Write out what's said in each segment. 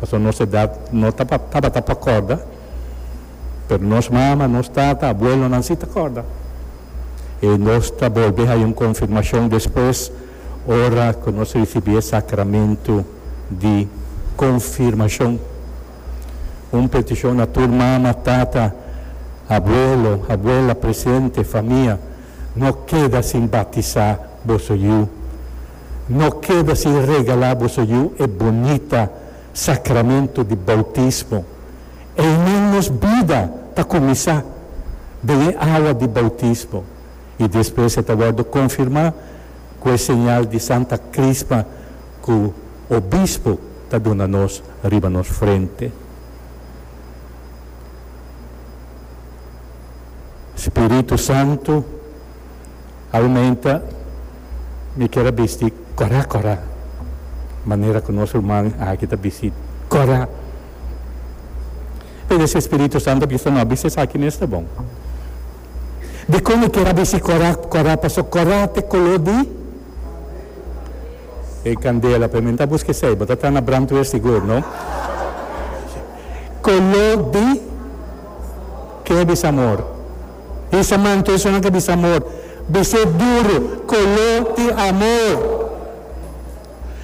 Pasobra nos edad no tabata pa corda, pero nos mama, nos tata, abuelonan si ta corda. I nos ta bolbe hay un confirmacion despues ora cu nos ricibi e sacramento di confirmacion. Un peticion na tur mama, tata, abuelo, abuela presente, famia, no keda sin batisa boso yu. No keda sin regalá boso yu e bonita sakramentu di boutismo. Eynan nos bida ta kuminsá den e awa di boutismo i despues e ta wòrdu konfirmá ku e señal di Santa Krisma ku obispo ta duna nos riba nos frente. Spiritu Santu. Aumenta mi kier a bisti corect corect manera cu nos ruman aki ta bisti corect. P'e deci Spiritu Santo a bisa no, bisti esaki mes ta bon. Dicon mi kier a bisti corect corect? Pasobra corect ta e color di e candela. P'e mi no ta busca esey, bo ta tanda brandweer sigur no? Color di ke a bisa amor? Hisa man cu esonan ta bisa amor. Bis'é duro, coló i amor.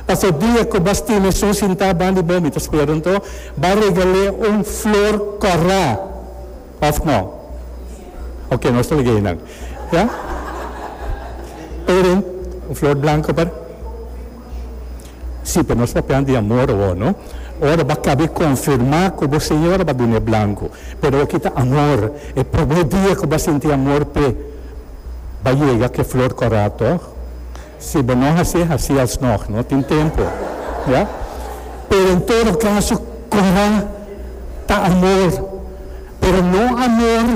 Pas e dia cu bas tin esun sintá ban di bo, mi ta spera un to, b'a regal'é un flor corá, of no? Oke, nos ta lag'é nan. Ya? Pero, un flor blanco pa. Sí, pero nos papia di amor awor, no? Ora bo a cabe confirma cu bo señora bo a duna e blanco, pero awor ki ta amor. E primer dia cu bo a sinti amor p'e, bo a yega cu e flor corá, tog? Si bo no haci, haci alsnog, no? Tin tempo, ya? Pero en todo caso, corá ta amor, pero no amor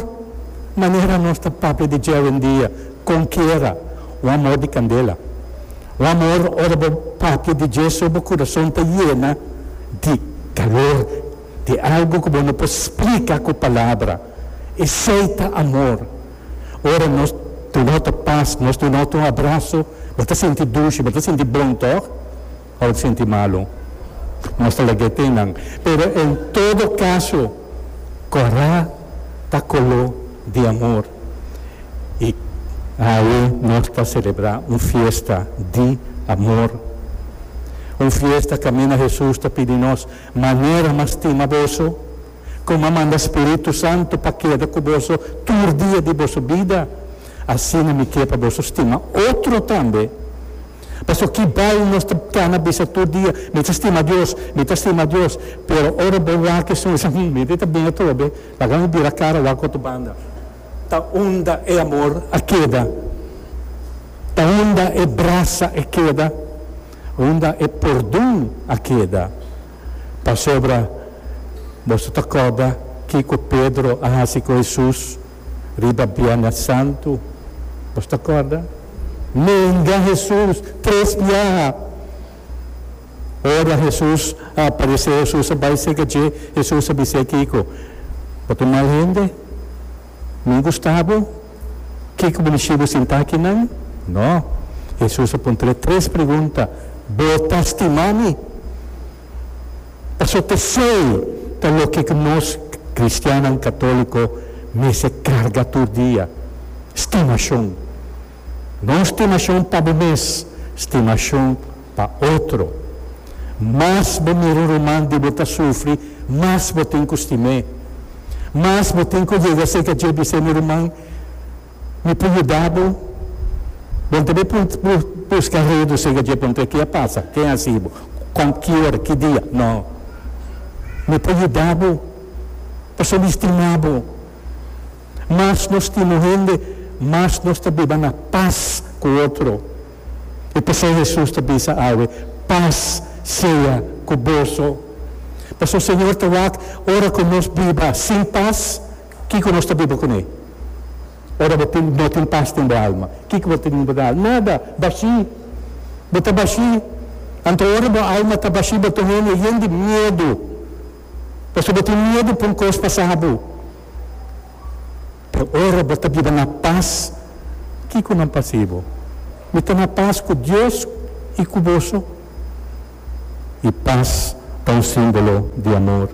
manera nos ta papia di dje awendia. Con kiera, un amor di candela. Un amor ora bo papia di dje so bo curason ta yena di calor, di algo cu bo no por splica cu palabra. Esey ta amor. Ora nos tunot paz, nos tunot un abrazo, bo ta sinti dushi, bo ta sinti bon, toch? pa bo sinti malu. Nos ta lek di e tinnan. Pero en todo kaso, Kòrá ta koló di amor. I awe nos ta selebrá un fiesta di amor. Un fiesta kaminda Hesus ta pidi nos, Manera m'a stima boso, kon m'a manda Spiritu Santu pa keda ku boso tur dia di boso bida, asina mi ke pa boso stima otro tambe. Pasobra ki bai nos ta gana bisa tur dia, Mi ta stima Dios, mi ta stima Dios, pero ora bo wak esun, bo dici, Mi ta bin atrobe, laga mi bira cara wak otro banda. Ta unda e amor a keda? Ta unda e brasa a keda? Unda e pordon a keda? Pasobra boso ta corda kico Pedro a haci cu Hesus? riba Bianas Santu. Nos ta corda? Nenga Hesus tres biaha. Ora Hesus a aparece, Hesus a bai seca dje, Hesus a bis'é kico? Bo ta un mal hende? Min gusta bo? Kico bo bishi bo sinta aki nan? No. Hesus a puntr'é tres pregunta, Bo ta stima mi? Paso pesey ta loke cu nos cristiannan católico mester carga tur dia, stimacion. No stimacion pa bo mes, stimacion pa otro. Mas bo mira un ruman di bo ta sufri, mas bo tin cu stim'é. Mas bo tin cu yega seca dje bis'é mi ruman Mi por yuda bo. Bon tambe por buska redo seca dje pregunta, Ke a pasa? Ken a hasi bo? Con? Ki ora? Ki dia? No. Mi por yuda bo pasobra mi stima bo. Mas nos stima un hende, mas nos ta biba na pas cu otro. I p'esei Hesus ta bisa awe, Pas sea cu boso. Pasobra Señor ta wak ora cu nos biba sin pas Kiko nos ta biba kuné? Ora bo tin no tin pas den bo alma, kiko bo ta biba den alma? Nada, bashí. Bo ta bashí. Anto ora bo alma ta bashí bo ta hende yen di miedu, pasobra bo tin miedu pa un kos pasá bo. Pero ora bo ta biba na pas, kiko nan pas'é bo? Mi ta na pas ku Dios i ku boso. I pas ta un símbolo di amor.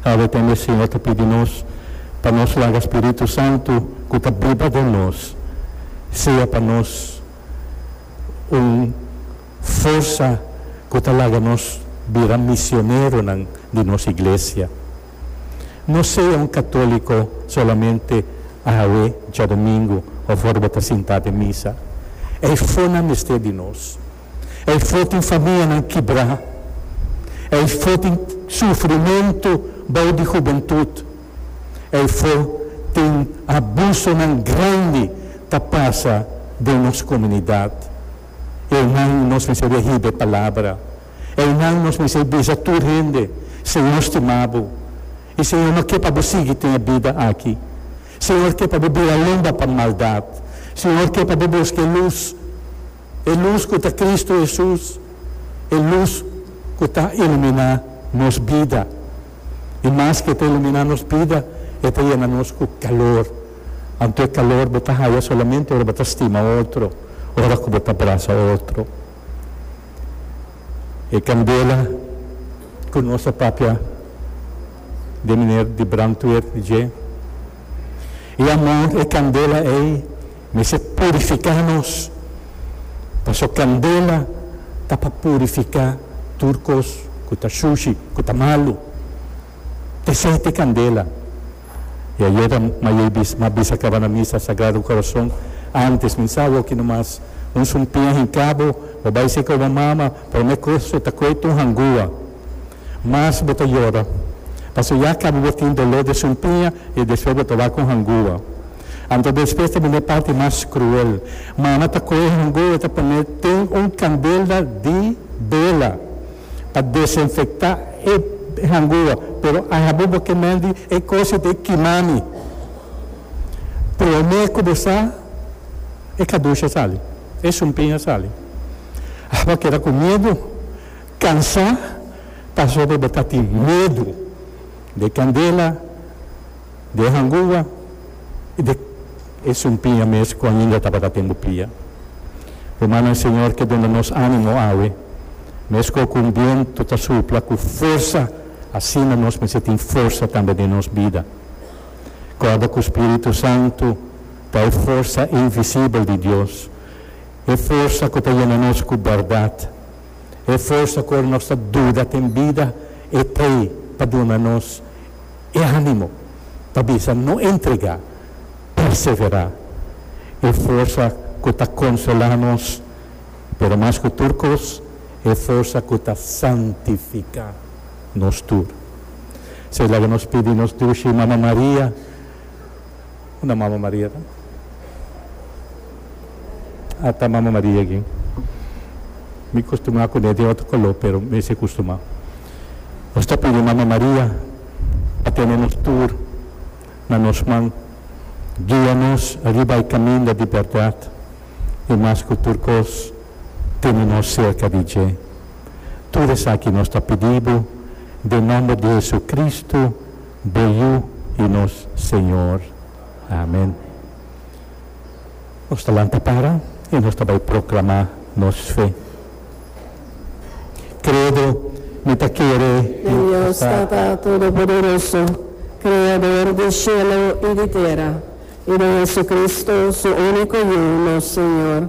Awe tambe e Siñor ta pidi nos pa nos laga Spiritu Santu ku ta biba den nos sea pa nos un forsa ku ta laga nos bira misioneronan di nos iglesia. No sea un katóliko solamente awe djadomingu òf ora bo ta sintá den misa. E fona mester di nos. Ei for tin famianan kibrá. Ei for tin sufrimentu bou di hubentut. Ei for tin abusonan grandi ta pasa den nos komunidat. Einan nos mester a hiba e palabra. Einan nos mester bisa tur hende, Señor stima bo. I Señor no ke pa bo sigui tin e bida aki. Señor ke pa bo bira lumba pa maldat. Señor ke pa bo busca e lus E lus ku ta Kristu Hesus, e lus ku ta iluminá nos bida. I maske e ta iluminá nos bida, e ta yena nos ku kalor. Anto e kalor bo ta haya solamente ora bo ta stima otro, ora ku bo ta brasa otro. E kandela ku nos a papia den mener di brantwer dje. I amor e candela ei mester purifica nos, paso candela ta pa purifica tur cos cu ta shushi, cu ta malu. Tesey t'e candela. I ayer a Mayey bisa, m'a bisa caba na misa Sagrado Corazon, antes mi sa awor ki no mas, un sumpia hincabo, bo bay seca oba mama, prome cos ta coe t'un hangua. Mas bo ta yora, pasobra ya caba bo tin dolor den su mpiña y despues bo ta wak con hangúa. Anto despues ta bini e parti mas cruel. Mana ta coge e hangúa y ta pone den un candela di bela pa desinfecta e hangúa. Pero ajabu bo ke mendi e cos y te kima mi. Prome cu bo sa, e cadushi a sali, e su mpiña a sali. Bo a keda cu miedu. Cansá pasobra bo ta tin medu d'e candela, d'e hangua i d'e esun pia mes cu ainda tabata den bo pia. Rumannan, Señor ke duna nos animo awe, mesco cu un bientu ta supla cu forsa, asina nos mester tin forsa tambe den nos bida. Corda cu Spiritu Santu ta e forsa invisibel di Dios, e forsa cu ta yena nos cu berdad. E forsa ku ora nos ta duda den bida e ta ei pa duna nos e animo pa bisa no entregá, perseverá. E forsa ku ta konsolá nos, pero mas ku tur kos e forsa ku ta santifiká nos tur. Esei laga nos pidi nos Dushi Mama Maria. Una Mama Maria ta. A ta Mama Maria aki. Mi custumá cuné den otro color, pero mester custumá. Nos ta pidi Mama Maria pa tene nos tur na nos man, guia nos riba e caminda di berdad i mas cu tur cos tene nos cerca di dje. Tur esaki nos ta pidi bo den nomber di Jesucristo. Bo Yu i nos Señor. Amen. Nos ta lanta para i nos ta bai proclamá nos fe. Credo, Mi ta kere di Dios Tata Todopoderoso, Creador di shelo i di tera, i den Jesucristo, Su único Yu, nos Señor,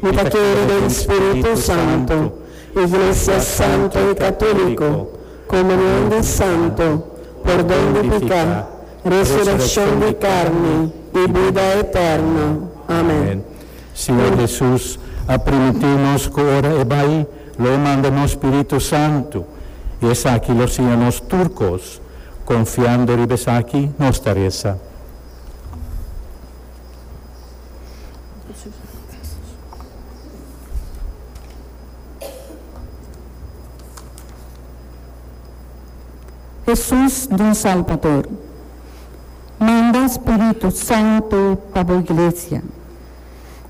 Mi ta kere den Spiritu Santo, Iglesia Santo i Katuliko, Komunion di Santo, pordon di piká, resurekshon di karni i bida eterno. Amen. Siñor Hesus a primiti'u nos ku ora e bai, lo e manda nos Spiritu Santo, i esaki lo siña nos tur kos. Konfiando riba esaki, nos ta resa. Hesus nos Salbador, manda Spiritu Santu pa bo iglesia.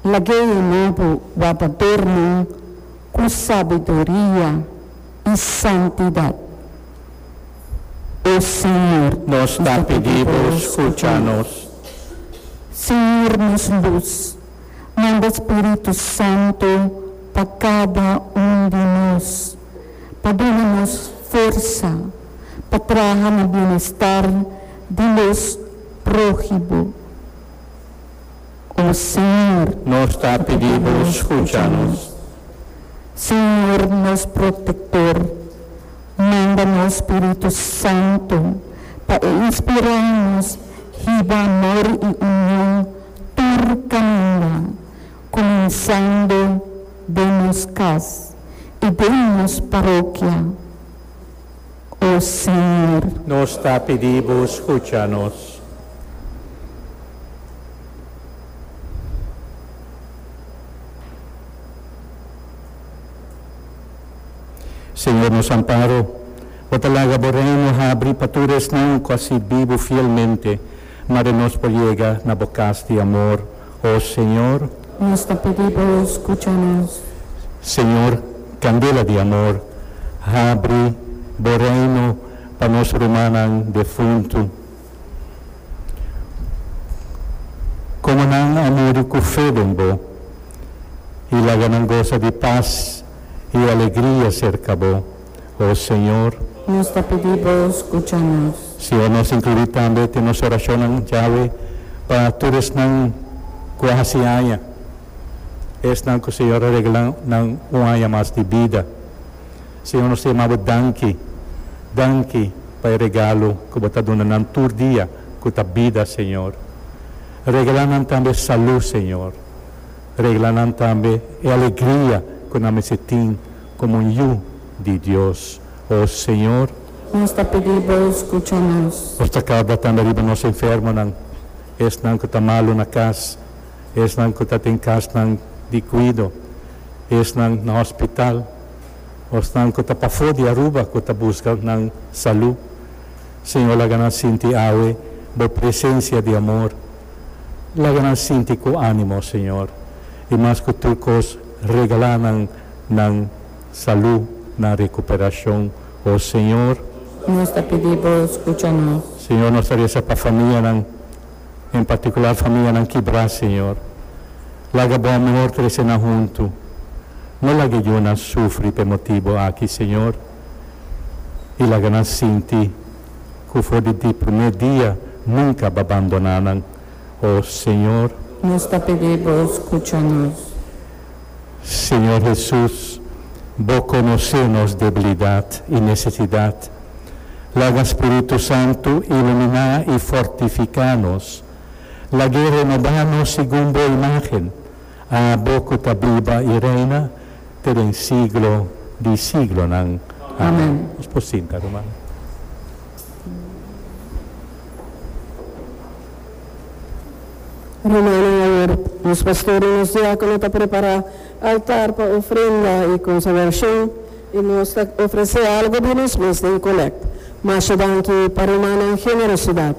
Lag'E yena bo wardadornan ku sabiduria i santidat, o Señor. Nos ta pidi bo scucha nos. Señor nos Lus, manda Spiritu Santo pa cada un di nos, pa duna nos forsa pa traha na bienestar di los prohibo. O Señor, nos ta pidi Bo scucha nos. Señor, nos Protector, manda nos Spiritu Santo pa e inspira nos hiba amor y union tur caminda, cuminsando den nos cas y den nos parokia. O Señor. Nos ta pidi Bo scucha nos. Señor, nos amparo, Bo ta laga Bo Reino habri pa tur esnan cu a sirbi Bo fielmente. Mari nos por yega na bo cas di amor, o Señor. Nos ta pidi bo, scucha nos. Señor, candela di amor, habri bo reino pa nos rumannan defuntu. Como nan a muri cu fe den bo, y laga nan gosa di paz y alegria cerca bo. O Señor. Nos ta pidi Bo, scucha nos. Si e nos inclui tambe den nos oracionnan, Yahwe, pa tur esnan cu a haci aña, esnan cu Señor a regla nan un aña mas di bida. Señor, nos ta yama Bo danki, danki pa e regalo cu Bo ta duna nan tur dia, cu ta bida, Señor. Regla nan tambe salud, Señor. Regla nan tambe e alegria cu nan mester tin. Como un Yu di Dios, o Señor. Nos ta pidi Bo scucha nos. Nos ta carda tambe riba nos enfermonan, esnan cu ta malu na cas, esnan cu ta den casnan di cuido, esnan na hospital, o esnan cu ta pafo di Aruba cu ta busca nan salu. Señor, laga nan sinti awe Bo presencia di amor. Laga nan sinti cu animo, Señor, y mas cu tur cos regala nan nan salú, nan rekuperashon, o Señor. Nos ta pidi Bo skucha nos. Señor, nos ta resa pa famianan, en partikular famianan kibrá, Señor. Laga Bo amor trese nan huntu. No laga e yunan sufri p'e motibu aki, Señor, i laga nan sinti ku for di di primé dia nunka Bo a bandoná nan, o Señor. Nos ta pidi Bo skucha nos. Señor Hesus, Bo conoce nos debilidad y necesidad. Laga Spiritu Santu ilumina y fortifica nos. Lag'E renoba nos segun Bo imagen, Abo cu ta biba y reina te den siglo di siglonan. Amen. Nos por sinta, rumannan. Rumannan ayer, nos pastor i nos diákono ta prepará altar pa ofrenda i konsagrashon, i nos ta ofresé algu di nos mes den kolèkt. Masha danki pa rumannan generosidat!